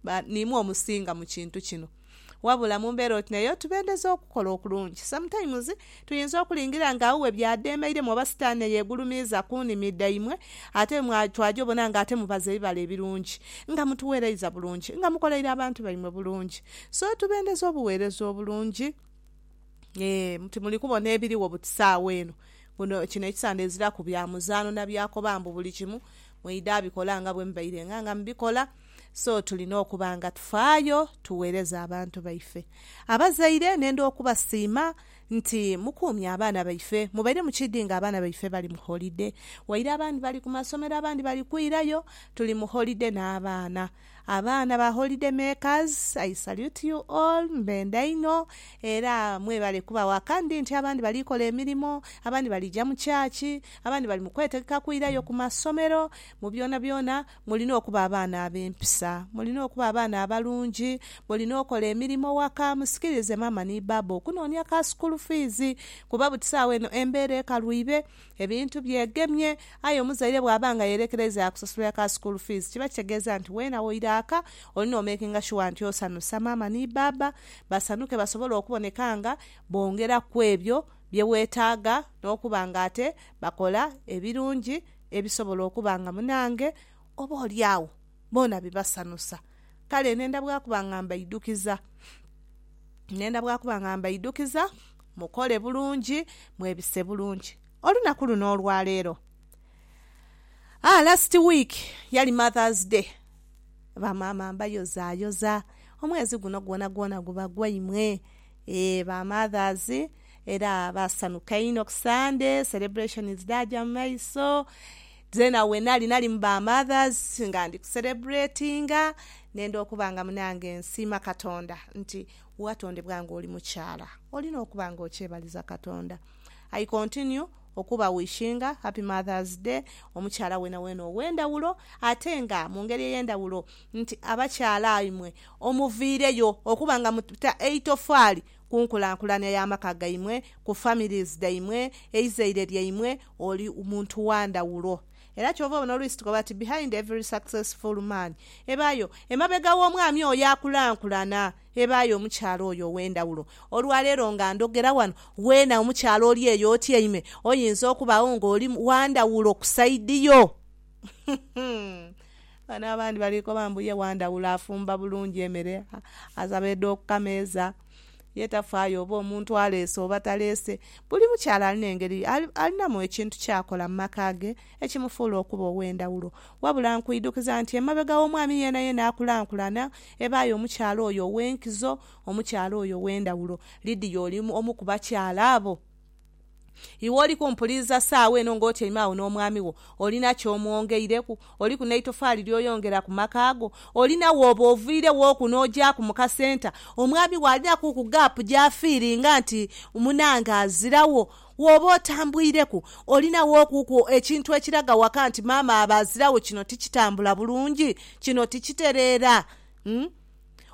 ba niimwe omusinga mu kintu kino. Wabula mu mbeera oti n'eyo, tubendeza okukola okulungi. Sometimes, tuyinza okulingira nga uwe by'adheemeiremu oba Sitaane yeegulumiiza ku nimi dhaimwe, ate mwa twaja obona nga ate mubaza ebibala ebirungi, nga mutuwereiza bulungi, nga mukoleire abantu baimwe bulungi. So, tubendeza obuweereza obulungi. Yee, nti muli kubona ebirigho buti saagha eno. Guno, kino ekisande eziraku bya muzaano na byakoba mbu buli kimu mwidha bikola nga bwe mubairenga nga mubikola. So tulina okuba nga tufaayo tugheereze abantu baife. Abazaire nenda okubasiima nti mukuumye abaana baife. Mubaire mukiidhi nga abaana baife bali mu holide. Waire abandi bali ku masomero abandi bali kwirayo, tuli mu holide n'abaana. Abaana ba Holide Makers, I salute you all, mbenda inho era mwebale kuba waka. Ndi nti abandi bali kola emirimo, abandi bali ja mu church, abandi bali mu kwetegeka kwirayo ku masomero, mu byonabyona Mulina okuba abaana ab'empisa. Mulina okuba abaana abalungi. Mulina okola emirimo ghaka. Musikirize maama ni bbaabba okunoonia ka sukuulu fiizi kuba buti saagho eno embeera ekalwibe, ebintu byegemye. Aye omuzaire bw'aba nga yeerekereiza yaakusasulira ka sukuulu fiizi, kiba kitegeeza nti weena woira aka, olina omekinga shuwa nti osanhusa maama ni bbaabba basanhuke basobole okuboneka nga bongera ku ebyo bye weetaaga n'okuba ng'ate bakola ebirungi. ebisobola okuba nga munange oboolyawo boona bibasanusa. Kale nenda bwa kuba nga mbaidhukiza, nenda bwa kuba nga mbaidhukiza mukole bulungi, mwebise bulungi. Olunaku luno olwa leero, aa last week yali Mother's Day, bamaama mbayozayoza, omwezi guno gwonagwona guba gwaimwe. Eeh ba mothers era basanuka inho ku Sunday celebrations dhaja mu maiso. Zeena wenali nali mu ba mothers nga ndi ku celebratinga nenda okuba nga munange nsiima katonda nti watondebwa nga oli mukyala olina okuba nga okyebaliza katonda. I continue okuba wishinga happy mothers day omukyala wenawena owendhawulo ate nga mu ngeri eyendhawulo nti abakyala imwe omuviireyo okuba nga muta eitofaali ku nkulankulania ya maka gaimwe, ku families dhaimwe, eizaire lyaimwe, oli muntu wa ndhawulo. Era kyova obona oluisi tukoba ti behind every successful man ebaayo, emabega w'omwami oyo akulankulana, ebaayo omukyala oyo ow'endhawulo. Olwaleero nga ndhogera wano, weena omukyala oli eyo otyaime, oyinza okubagho nga oli wa ndhawulo ku side yo. Ghano abandi bali koba mbu ye wandhawulo afumba bulungi emere, asaba edha kukameeza, ye tafaayo oba omuntu aleese oba taleese. Buli mukyala alina engeri, alinamu ekintu kyakola mu maka ge ekimufuula okuba ow'endhawulo. Wabula nkwidhukiza nti emabega w'omwami yeenayeena akulankulana, ebaayo omukyala oyo ow'enkizo, omukyala oyo ow'endhawulo. Lydia oli omu ku bakyala abo? Iwe oli kumpuliriza saagho eno ng'otyaime agho n'omwami wo? Olina ky'omwongeireku? Oliku n'eitofaali ly'oyongera ku maka go? Olina wooba oviireghoku n'ogyaaku mu kasenta, omwami wo alinaku ku gaapu gy'afiiringa nti munange aziragho? Wooba otambwireku, olina wookuku ekintu ekiraga waka nti maama abe aziragho kino tikitambula bulungi, kino tikitereera?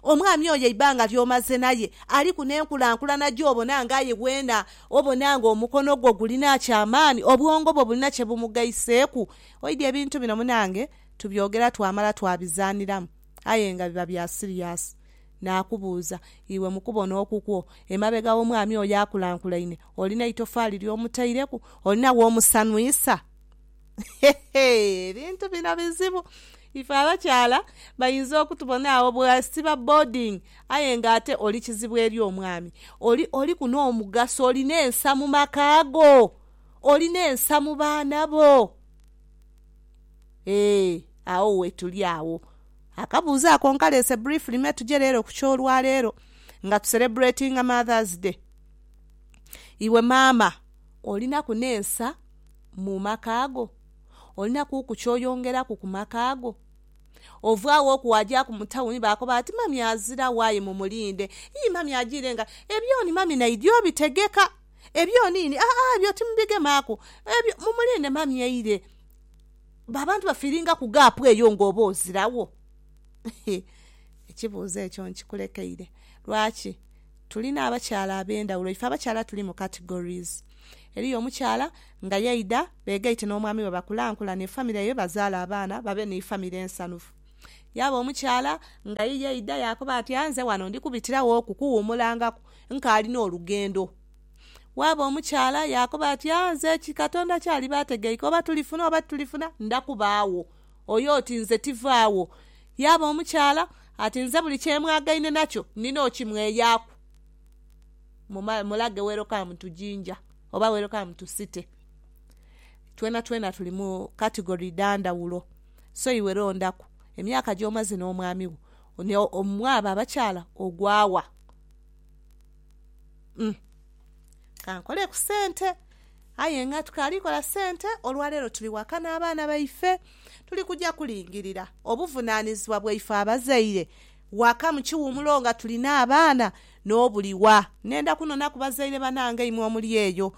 Omwami oyo eibanga ly'omaze naye aliku n'enkulankulana gy'obona nga aye weena obona nga omukono gwo gulina aky'amaani, obwongo bwo bulina kye bumugaiseeku. Oidhi ebintu bino munange tubyogera twamala twabizaaniramu aye nga biba bya siriyasi. Naakubuuza, iwe mu kubona okukwo, emabega w'omwami oyo akulankulaine olina eitofaali ly'omutaireku? Olina w'omusanhwisa? Ebintu bino bizibu. Ife abakyala bainza okutubona agho bwasiba boarding aye nga ate oli kizibu eri omwami. Oli, oliku n'omugaso, olina ensa mu maka go. Olina ensa mu baana bo. Ee, agho wetuli agho. Akabuuzo ako nkaleese briefly me tuje leero ku ky'olwaleero nga tu celebratinga Mother's Day. Iwe maama, olinaku n'ensa mu maka go? Olina kuku ky'oyongeraku ku maka go? Ovaagho oku waajaaku mu tawuni baakoba bati, 'Mami aziragho aye mumulinde. Ii, mami ajiire nga. Ebyoni mami naidhi obitegeka. Ebyoni ini, aa, ebyo timubigemaaku. Ebyo, mumulinde mami aire. Abantu bafiiringaku gaapu eyo ng'oba oziragho. Hee, ekibuuzo ekyo nkikulekeire. Lwaki? Tulina abakyala ab'endhaghulo. Ife abakyala tuli mu categories. Eriyo omukyala nga yaidha beegaite n'omwami we bakulankulane efamire ye, bazaale abaana, babe ni famire ensanhufu. Yaaba omukyala nga ye yaidha yaakoba ati, Aye nze wano ndi kubitirawoku kuwumulangaku, nkaali n'olugendo. Waaba omukyala yaakoba ati, Aye nze ki, Katonda ky'aliba ategeike, oba tulifuna oba titulifuna, nda kuba agho. Oyo oti, Nze tiva agho. Yaaba omukyala ati, Nze buli kye mwagaine nakyo, ndina okimweyaaku. mulage welcome to Jinja oba welcome to city twena twena tuli mu category dha ndhaghulo so iwe londhaku emyaka gyomaze n'omwami wo mwabo abakyala ogwa wa? Kankole ku sente aye nga tukaali kola sente olwaleero tuli waka n'abaana baife tuli kuja kulingirira obuvunanizibwa bwaife abazaire Waka mu kiwumulo nga tulina abaana n'obuliwa. Nenda kunona ku bazaire banange imwe omuli eyo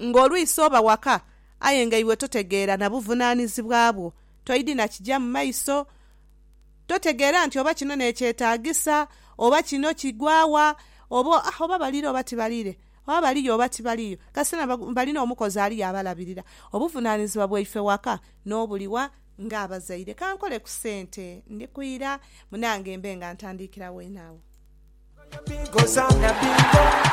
nga olwisi oba waka aye nga iwe totegeera na buvunanizibwa bwo. Toidi na kija mu maiso. Totegeera nti oba kino n'ekyetagisa, oba kino kigwa wa, oba oba balire oba tibalire, oba baliyo oba tibaliyo. Kasita na bali n'omukozi aliyo abalabirira. Obuvunanizibwa bwaife waka n'obuliwa Ng'abazaire, ka nkole ku sente ndi ku ira munange mbe nga ntandiikira weene agho.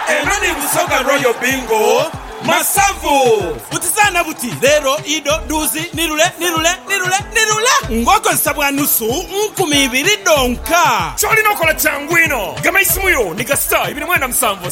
Eno ni Busoga Royal Bingo Masavu. Butizaana buti, Leero, ido, duuzi, nirule, nirule, nirule, nirule ng'okozesa bwa nusu nkumi ibiri dhonka. Ky'olina okola kyangu inho. Gema isimu yo ni ga star ibiri mwenda musanvu,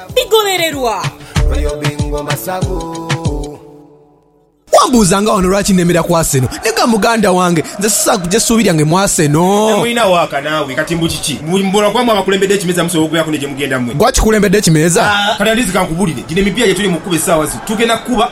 bigholererwa. Wambuuza nga wano lwaki nemera ku Arsenal naye ga muganda wange nze sisaagho kugya suubi lyange mu Arsenal. Temulina waaka naawe kati mbu kiki? Mbu mubula kuba mwe abakulembedde ekimeeza musobola okubeeraku ni gye mugenda mwe? Gwe akikulembedde ekimeeza? Kati at least kankubulire, gino emipiira gye tuli mu kukuba essaawa zino tugenda kukuba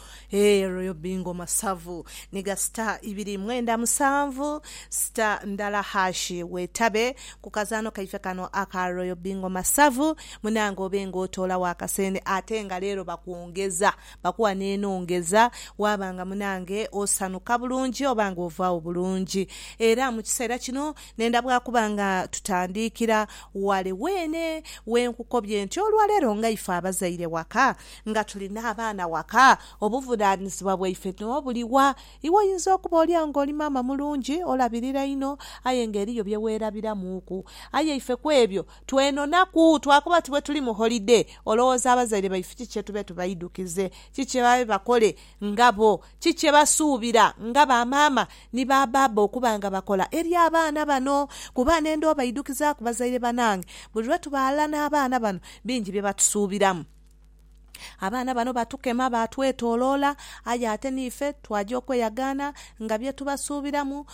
Eeh royal bingo masavu ni ga star ibiri mwenda musanvu star ndala hash wetabe ku kazaano kaife kano aka royal bingo masavu munange obe nga otoolawo akasente ate nga leero bakwongeza bakuwa nenongeza waaba nga munange osanuka bulungi oba nga ovaawo bulungi era mu kiseera kino nenda bwakuba nga tutandiikira wale weene wenkukobye nti olwaleero nga ife abazaire waka Nga tuli n'abaana waka, obuvunaanizibwa bwaife nio buli wa? Iwe oyinza okuba olia ng'oli maama mulungi, olabirira inho, aye ng'eriyo bye weerabiramuuku. Aye ife ku ebyo twenonaku. Twakoba ti bwe tuli mu holide, olowooza abazaire baife ki kye tube tubaidukize? Ki kye babe bakole nga bo? Ki kye basuubira nga bamaama ni babaaba okuba nga bakola eri abaana bano? Kuba nenda obaidukizaaku bazaire banange. Buli lwe tuba ghalala n'abaana bano, bingi bye batusuubiramu. Abaana bano batukema, baatwetooloola, aye ate n'ife twaja okweyagaana nga bye tubasuubiramu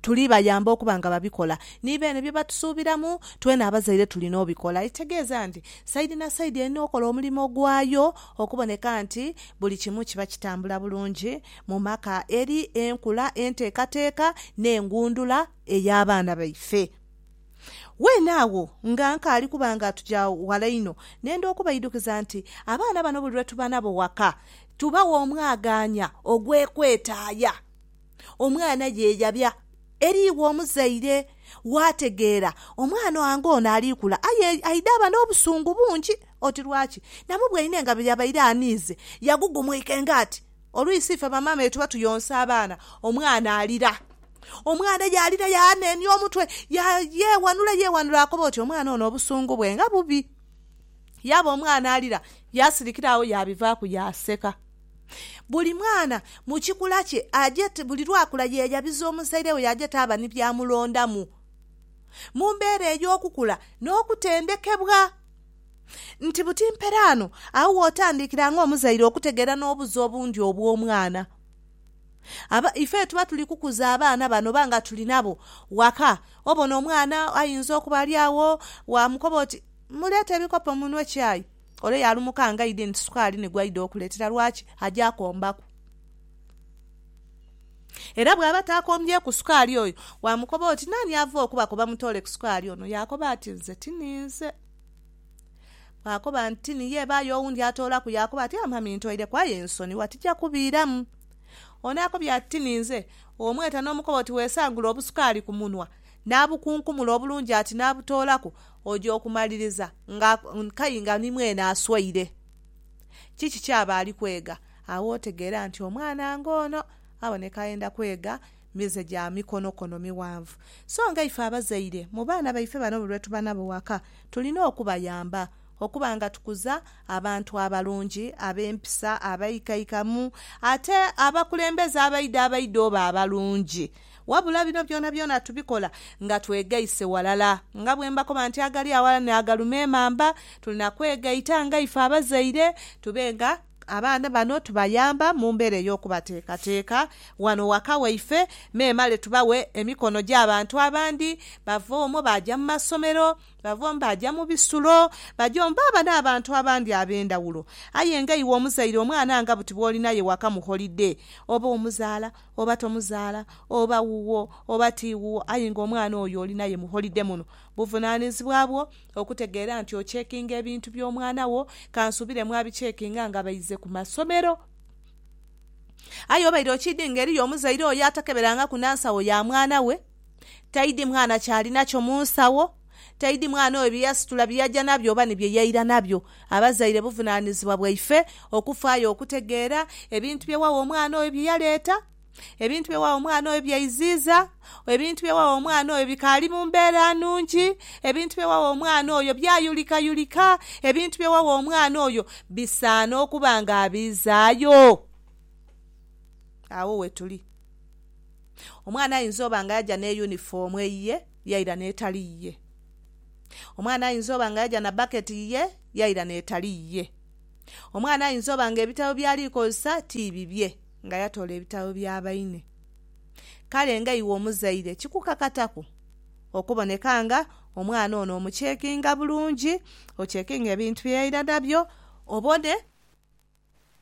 tuli bayamba okuba nga babikola. Ni beene bye batusuubiramu, twena abazaire tulina obikola. Ekitegeeza nti saidi na saidi erina okola omulimo gwayo okuboneka nti buli kimu kiba kitambula bulungi mu maka eri enkula, enteekateeka n'engundula ey'abaana baife. Weene agho nga nkaali kuba nga tuja ghala inho, nenda okubaidukiza nti abaana bano buli lwe tuba nabo waka, tubagha omwagaanya ogw'ekwetaaya. Omwana ye yabya eri iwe omuzaire, waategeera omwana wange ono ali kula aye aidhaba n'obusungu bungi. Oti lwaki? Namubwaine nga bwe yabaire aniize, yagugumuika engaati. Oluisi ife bamaama bye tuba tuyonsa abaana, omwana alira. Omwana yaalira yaanenia omutwe, yeewanula yeewanula akoba oti omwana ono obusungu bwe nga bubi. Yaaba omwana alira, yaasirikira agho yaabivaaku yaaseka. Buli mwana mu kikula kye aje buli lwakula yeeyabiza omuzaire we yaaje taaba ni byamulondamu mu mbeera ey'okukula n'okutendekebwa. nti buti mperaano agho w'otandiikira ng'omuzaire okutegeera n'obuzo obundi obw'omwana. Aba, ife tuba tuli kukuza abaana bano oba nga tuli nabo waka, obona omwana ayinza okuba ali agho, waamukoba oti, Muleete ebikopo munwe chai. Ole yaalumuka nga aidhi nti sukaali ni gw'aidha okuleetera. Lwaki? Aja kombaku. Era bw'aba taakombyeku sukaali oyo, waamukoba oti, Naani ava okubakoba mutoole ku sukaali ono? Yaakoba ati, Nze tininze. Bw'akoba nti, Ni ye, ebaayo owundi atoolaku, yaakoba ati, Amami, ntoireku aye ensoni, wa tija kubiiramu. Ono akobye ati, Ni nze. Omweta n'omukoba oti, Weesangule obusukaali ku munwa, naabukunkumula obulungi ati naabutoolaku, oja okumaliriza nga nkai nga ni mwene aswaire. Kiki ky'aba ali kwega? Agho otegeera nti omwana ng'ono aboneka ayenda kwega. mize gya mikonokono mighanvu. So nga ife abazaire, mu baana baife bano buli lwe tuba nabo ghaka, tulina okubayamba okuba nga tukuza abantu abalungi, ab'empisa, abaikaikamu, ate abakulembeze abaidha abaidha oba abalungi. Wabula bino byonabyona tubikola nga twegaise walala. Nga bwe mbakoba nti agali aghalala n'agalume emamba, tulina kwegaita nga ife abazaire tube nga Abaana bano tubayamba mu mbeera ey'okubateekateeka wano waka waife memale tubaghe emikono gy'abantu abandi. Bava omwo baaja mu masomero, bava omwo baaja mu bisulo, baja omwo baaba n'abantu abandi ab'endhawulo. Aye nga iwe omuzaire omwana nga buti bw'oli naye waka mu holide, oba omuzaala oba tomuzaala, oba wuwo oba ti wuwo aye nga omwana oyo oli naye mu holide muno, buvunaanizibwa bwo Okutegeera nti okyekinga ebintu by'omwana wo, kansuubire mwabikyekinga nga baize ku masomero. Aye obaire okiidhi nga eriyo omuzaire oyo atakeberangaku na nsawo ya mwana we, taidhi mwana kyali nakyo mu nsawo, taidhi mwana oyo bye yasitula bye yaja nabyo oba ni bye yaira nabyo. Abazaire buvunaanizibwa bwaife okufaayo okutegeera ebintu bye wagha omwana oyo bye yaleeta. ebintu bye wagha omwana oyo byaiziiza, ebintu bye wagha omwana oyo bikaali mu mbeera nnungi, ebintu bye wagha omwana oyo byayulikayulika, ebintu bye wagha omwana oyo bisaana okuba nga abiizaayo. Agho wetuli. Omwana aidha oba nga yaja ne yunifoomu eyiye yaira n'etali yiye. Omwana aidha oba nga yaja na baketi yiye yaira n'etali yiye. Omwana aidha oba nga ebitabo byali kozesa ti bibye. Nga yatoola ebitabo bya baine. Kale nga iwe omuzaire kikukakataku okuboneka nga omwana ono omucekinga bulungi, ocekinga ebintu bye yaira nabyo obone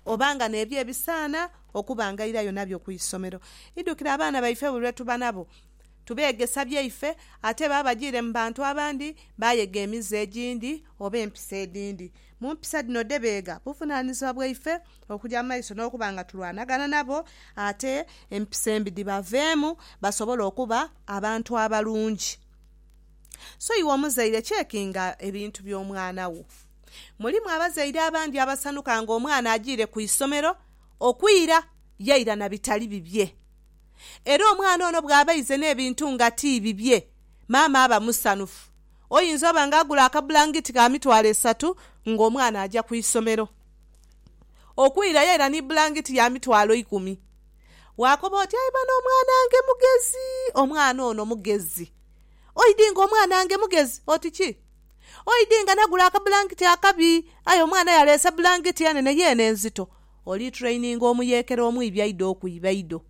oba nga n'ebyo ebisaana okuba nga airayo nabyo ku isomero. Idhukira abaana baife buli lwe tuba nabo tubeegesa byaife ate baba bagiire mu bantu abandi baayega emize egindi oba empisa edhindi. Mu mpisa dhino dhe beega, buvunaanyizibwa bwaife okuja mu maiso n'okuba nga tulwanagana nabo ate empisa embi dhibaveemu basobole okuba abantu abalungi. So iwe omuzaire cekinga ebintu by'omwana wo. Mulimu abazaire abandi abasanhuka ng'omwana ajiire ku isomero okwira yaira na bitali bibye. Era omwana ono bw'aba aize n'ebintu nga ti bibye, maama aba musanhufu. Oyinza oba nga agula akabulangiti ka mitwalo esatu nga omwana aja ku isomero okwirayo era ni bulangiti ya mitwalo ikumi. Waakoba oti, Aye bano omwana ange mugezi, omwana ono mugezi. Oidhi nga omwana ange mugezi oti ki? Oidhi nga nagula akabulangiti akabi aye omwana yaleese bulangiti enene yo eno enzito. Oli traininga omuyeekera omwibi aidha okwiba ido.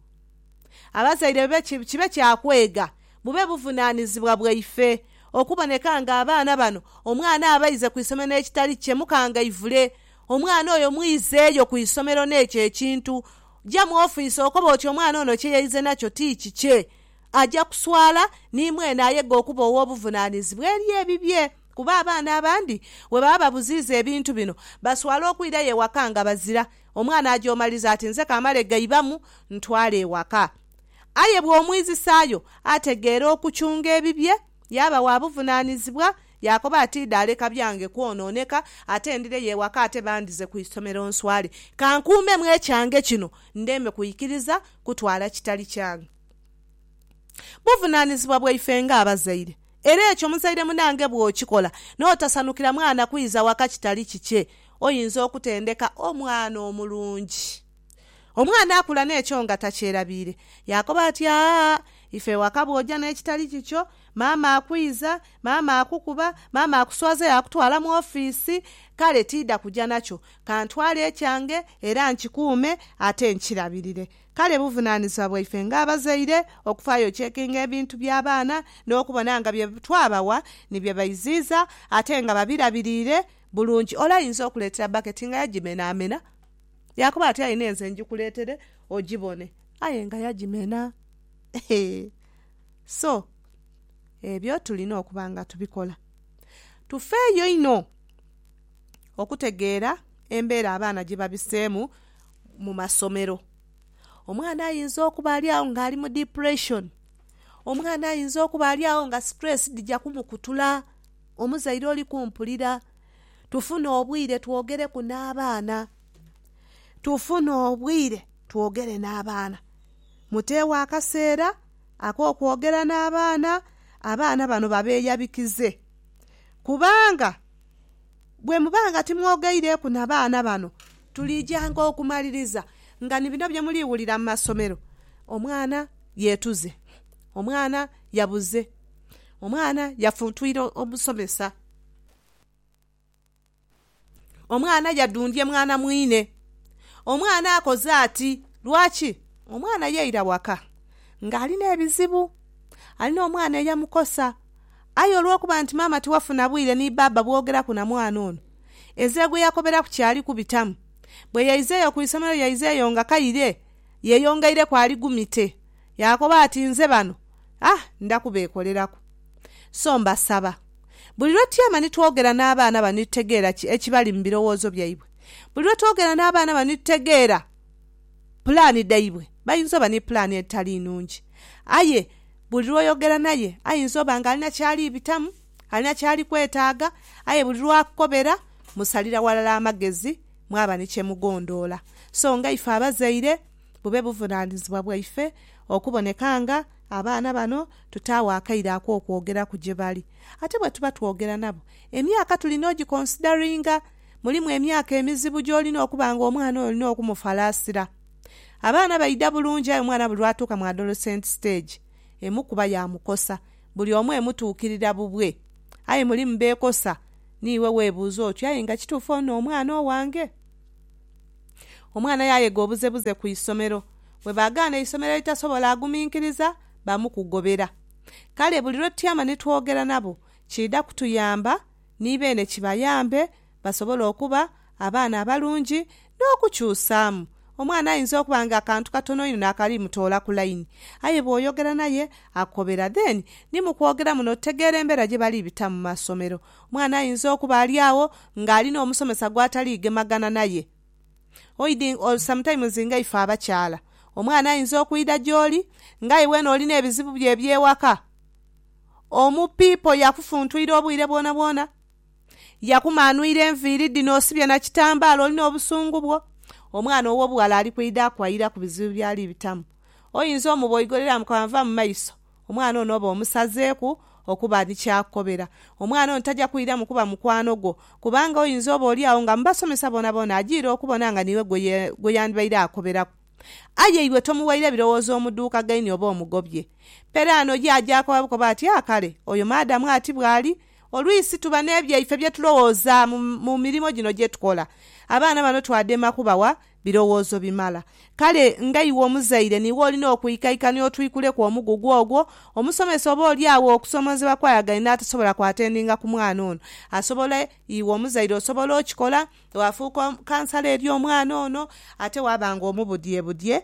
Abazaire be kibe kya kwega Bube buvunaanizibwa bwaife okuboneka nga abaana bano omwana aba aize ku isomero n'ekitali kye mukangaivule. Omwana oyo mwizeeyo ku isomero n'ekyo ekintu. Ja mu ofiisi okobe oti omwana ono kye yaize nakyo ti kikye. Aja kuswala ni mwene ayega okuba ow'obuvunaanizibwa eri ebibye kuba abaana abandi bwe baba babuziiza ebintu bino baswala okwirayo ewaka nga bazira. Omwana aja omaliza ati nze kamale gaibamu ntwale ewaka. Aye bw'omwizisaayo, ategeera okuchunga ebibye, yaaba wa buvunaanizibwa, yaakoba ati, Idha leka byange kwonooneka, ate ndireyo ewaka ate bandhize ku isomero nswale. Ka nkuumemu ekyange kino, ndeme kwikiriza kutwala kitali kyange. Buvunaanizibwa bwaife ng'abazaire. Era ekyo muzaire munange bw'okikola n'otasanukira mwana kwidha waka kitali kikye, oyinza okutendeka omwana omulungi. Omwana akula n'ekyo nga takyerabiire. Yaakoba ati, Aa, ife ewaka bw'oja n'ekitali kikyo, maama akwiiza, maama akukuba, maama akuswaza yaakutwala mu ofiisi. Kale tiidha kuja nakyo. Ka ntwale ekyange era nkikuume ate nkirabirire. Kale buvunaanizibwa bwaife ng'abazaire okufaayo okyekinga ebintu by'abaana n'okubona nga bye twabawa ni bye baiziiza ate nga babirabiriire bulungi. Ole ayinza okuleetera bbaketi nga yagimenaamena. Yaakoba ati, Aye nenze ngikuleetere ogibone. Aye nga yagimena. He! So, ebyo tulina okuba nga tubikola. Tufeeyo inho okutegeera embeera abaana gye babiseemu mu masomero. Omwana ayinza okuba ali agho ng'ali mu depression. Omwana ayinza okuba ali agho nga stress dhija kumukutula. Omuzaire oli kumpulira? tufune obwire twogereku n'abaana. Tufune obwire twogere n'abaana. Muteegho akaseera ak'okwogera n'abaana, abaana bano babeeyabikize. Kubanga bwe muba nga timwogeireku na baana bano, tuliidhyanga okumaliriza nga ni bino bye muli wulira mu masomero, omwana yeetuze, omwana yabuze, omwana yafuntwire omusomesa. Omwana yadundhye mwana mwine. Omwana akoze ati lwaki? Omwana yaira waka ng'ali n'ebizibu. Ali n'omwana eyamukosa. Aye olw'okuba nti maama tiwafuna bwire ni baaba bwogeraku na mwana ono, ezira gwe yakoberaku kyali kubitamu. Bwe yaizeeyo ku isomero yaizeeyo nga kaire yeyongeireku ali gumite. Yaakoba ati nze bano, ah, ndakubeekoleraku. So mbasaba. Buli lwe tutyama ni twogera n'abaana bano ni tutegeera ki ekibali mu birowoozo byaibwe. Buli lwe twogera n'abaana bano ni tutegeera pulaani dhaibwe. Bayinza oba ni pulaani edhitali nnungi. Aye buli lw'oyogera naye ayinza oba ng'alina ky'ali bitamu, alina ky'ali kwetaaga. Aye buli lw'akukobera musalira ghalala amagezi mwaba ni kye mugondoola. So nga ife abazaire bube buvunaanizibwa bwaife okuboneka nga. Abaana bano tutaagho akaire ak'okwogeraku gye bali. Ate bwe tuba twogera nabo, emyaka tulina ogikonsidaringa. Mulimu emyaka emizibu gy'olina okuba nga omwana oyo olina okumufalaasira. Abaana baidha bulungi aye omwana buli lw'atuuka mu adolescent stage, emukuba yaamukosa. Buli omu emutuukirira bubwe. Aye mulimu beekosa. Niiwe weebuuza oti, Aye nga kituufu ono omwana owange? Omwana yaayega obuzebuze ku isomero. Bwe baagaana eisomero eritasobola aguminkiriza bamukugobera. Kale buli lwe tutyama ni twogera nabo kiidha kutuyamba ni beene kibayambe basobole okuba abaana abalungi n'okukyusaamu. Omwana ayinza okuba nga akantu katono inho naakali mutola ku laini. Aye bw'oyogera naye akukobera. Then ni mu kwogera muno otegeera embeera gye bali bitamu mu masomero. Omwana ayinza okuba ali agho nga alina omusomesa gwatali gemagana naye. Oidhi or sometimes nga ife abakyala, omwana ayinza okwidha gyoli nga aye wena olina ebizibu byo ebyewaka. Omu pipo yakufuntwire obwire bwona bwona, yakumanwire enviiri dhino osibye na kitambala olina obusungu bwo. Omwana owobughala ali kwidha akwayiraku bizibu byali bitamu. Oyinza omuboigolera amukoba nva mu maiso. Omwana ono oba omusazeeku okuba ni ky'akukobera. Omwana ono taja kwiramu kuba mukwano gwo, kubanga oinza oboolyawo nga mu basomesa boonaboona ajiire okubona nga niiwe gwe yandibaire akoberaku. Aye iwe tomuwaire birowoozo omuduukagaine oba omugobye. Peraano ye aja akoba bukobi ati, Ah kale, oyo maadamu ati bw'ali! Oluisi tuba n'ebyaife bye tulowooza mu mirimo gino gye tukola. Abaana bano twadema kubawa Birowoozo bimala. Kale nga iwe omuzaire niiwe olina okwikaikania otwikuleku omugugu ogwo. Omusomesa oba oli agho okusoomoozebwa kwayagaine n'atasobola kwatendinga ku mwana ono, asobola, iwe omuzaire osobola okikola, waafuuka kansala eri omwana ono ate waaba ng'omubudyebudye